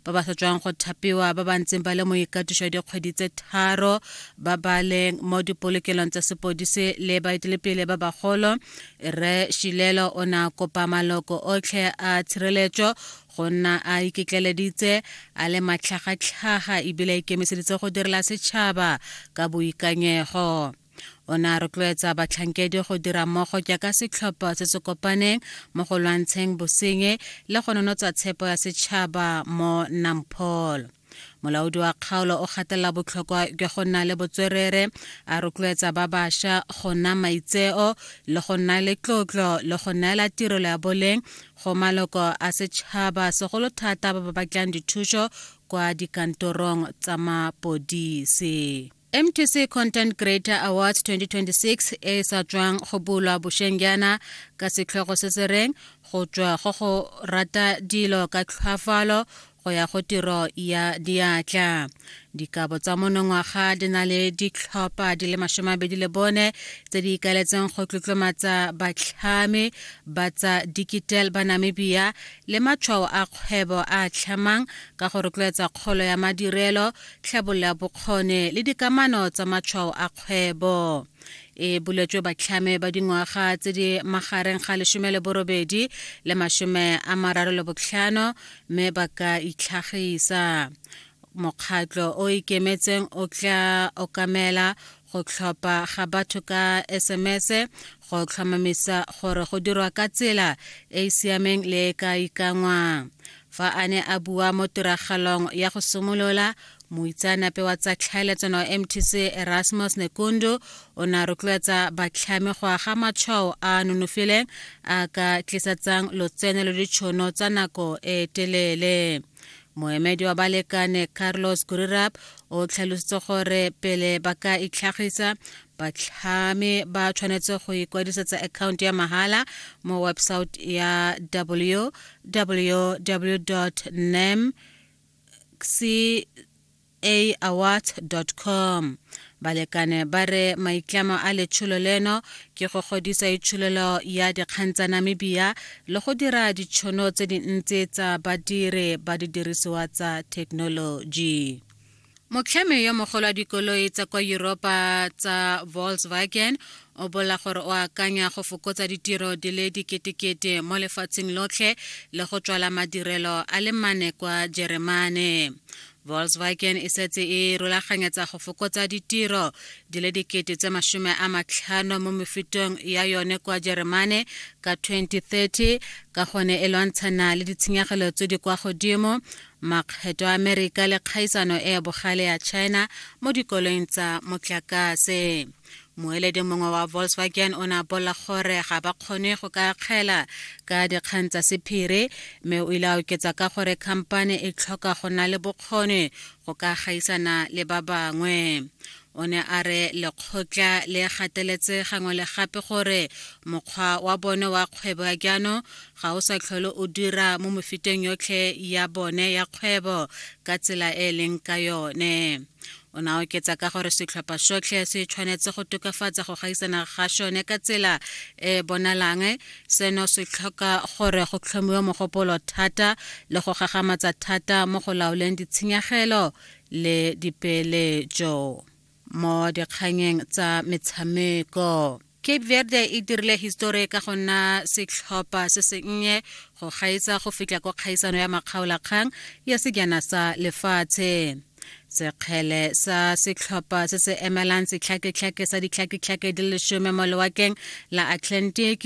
ba ba sa tswang go thapiwa ba ba ntseng ba le mo ikatiso ya dikgwedi tse tharo ba ba leng mo dipolokelong tsa sepodise le baetelepele ba bagolo re shilelo o ne a kopa maloko otlhe a tshireletso go nna a iketleleditse a le matlhagatlhaga ebile a ikemiseditse go direla setšhaba ka boikanyego o ne a rotloetsa batlhankedi go dira mmogo jaaka setlhopha se se kopaneng mo go lwantsheng bosenye le go nonotsa tshepo ya setšhaba mo namphol molaodi wa kgaolo o gatelela botlhokwa jwa go nna le botswerere a rotloetsa ba bašwa go nna maitseo le go nna le tlotlo le go neela tirelo ya boleng go maloko a setšhaba segolo thata ba ba batlang dithuso kwa dikantorong tsa mapodisi mtc content creator awards 2026 e sa tswang go bulwa bošeng jaana ka setlhogo se se reng go tswa go go rata dilo ka tlhwafalo go ya go tiro ya diatla dikabo tsa monongwaga di na le ditlhopha di le masomabedi le bone tse di ikaletseng go tlotlomatsa batlhami ba tsa digital ba namibia le matshwao a kgwebo a tlhamang ka go rotloetsa kgolo ya madirelo tlhabolola bokgone le dikamano tsa matshwao a kgwebo e buletswe batlhame ba dingwaga tse di magareng ga lesome le borobedi le masome a mararo le botlhano mme ba ka itlhagisa mokgatlo o ikemetseng o tla okamela go tlhopha ga batho ka sms go tlhomamisa gore go dirwa ka tsela e e siameng le e ka ikangwang fa a ne a bua mo tiragalong ya go simolola moitseanape wa tsa tlhaeletsano wa mtc erasmus nekundu o ne a rotloetsa batlhami go aga matshwao a nonofileng a ka tlisetsang lotseno le ditšhono tsa nako e telele moemedi wa balekane carlos gurirab o tlhalositse gore pele ba ka itlhagisa batlhami ba tshwanetse go ikwadisetsa account ya mahala mo website ya www nem aawards.com balekane ba re maitlamo a letsholo leno ke go godisa itsholelo ya dikgang tsa namibia le go dira ditšhono tse dintsi tsa badiri ba didirisiwa tsa thekenoloji motlhami yo mogolo wa dikoloi tsa kwa europa tsa volkswagen o bola gore o akanya go fokotsa ditiro di le diketekete mo lefatsheng lotlhe le go tswala madirelo a le mane kwa jeremane Volkswagen e setse e rolaganyetsa go fokotsa ditiro di le dikete tse masome a matlhano mo mefutong ya yone kwa Jeremane ka 2030 ka gone e lwantshana le ditshenyegelo tse di kwa godimo makgetho a Amerika le kgaisano e bogale ya China mo dikoloing tsa motlakase. moeledi mongwe wa volkswagen o ne a bolela gore ga ba kgone go ka kgela ka dikgang tsa sephiri mme o ile a oketsa ka gore khamphane e tlhoka go na le bokgoni go ka gaisana le ba bangwe o ne a re lekgotla le gateletse gangwe le gape gore mokgwa wa bone wa kgwebo ya jaanong ga o sa tlhole o dira mo mefuteng yotlhe ya bone ya kgwebo ka tsela e e leng ka yone O ne a oketsa ka gore setlhopha sotlhe se tshwanetse go tokafatsa go gaisana ga sone ka tsela e e bonalang. Seno se tlhoka gore go tlhomiwe mogopolo thata le go gagamatsa thata mo go laoleng ditshenyegelo le dipeeletso mo dikganyeng tsa metshameko. cape verde e dirile histori ka go nna setlhopha se sennye go gaetsa go fitlha kwa kgaisano ya makgaolakgang ya sejana sa lefatshe sekgele sa setlhopha se se emelang setlhaketlhake sa ditlhaketlhake di lesome mo lewakeng la atlantic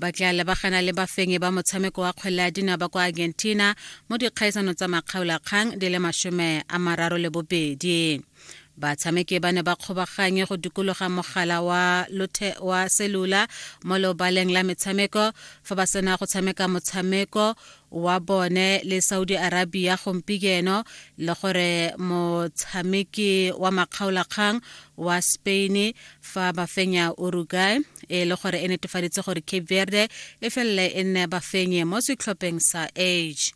ba tla lebagana le bafenyi ba motshameko wa kgwele ya dinaba kwa argentina mo dikgaisano tsa makgaolakgang di le masome a mararo le bobedi batshameki ba ne ba kgobaganye go dikologa mogala wa lothe wa selula mo leobaleng la metshameko fa ba sena go tshameka motshameko wa bone le saudi arabia gompieno le gore motshameki wa makgaolakgang wa spain fa ba fenya uruguay e le gore e netefaditse gore cape verde e felele e nne bafenye mo setlhopheng sa age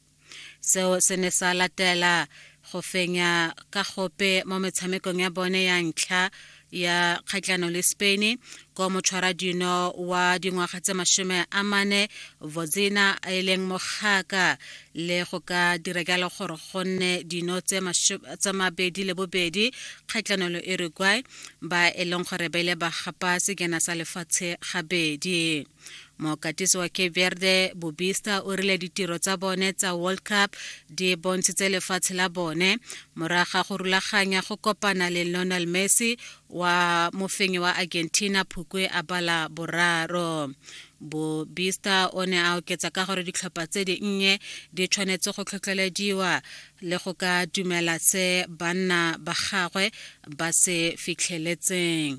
Seo se ne sa latela go fenya ka gope mo metshamekong ya bone ya ntlha ya kgatlano le Spain ko motshwara dino wa dingwaga tse mashome a mane Vodzina e leng mogaka le go ka dira jalo gore go nne dino tse mabedi le bobedi kgatlano le Uruguay ba e leng gore ba ile ba gapa sekena sa lefatshe gabedi mokatisi wa cape verde bobista o rile ditiro tsa bone tsa world cup di bontshitse lefatshe la bone morago ga go rulaganya go kopana le lionel messi wa mofenyi wa argentina phukwe a bala boraro bobista o ne a oketsa ka gore ditlhopha tse dinnye di tshwanetse go tlhotlhelediwa le go ka dumela se banna ba gagwe ba se fitlheletseng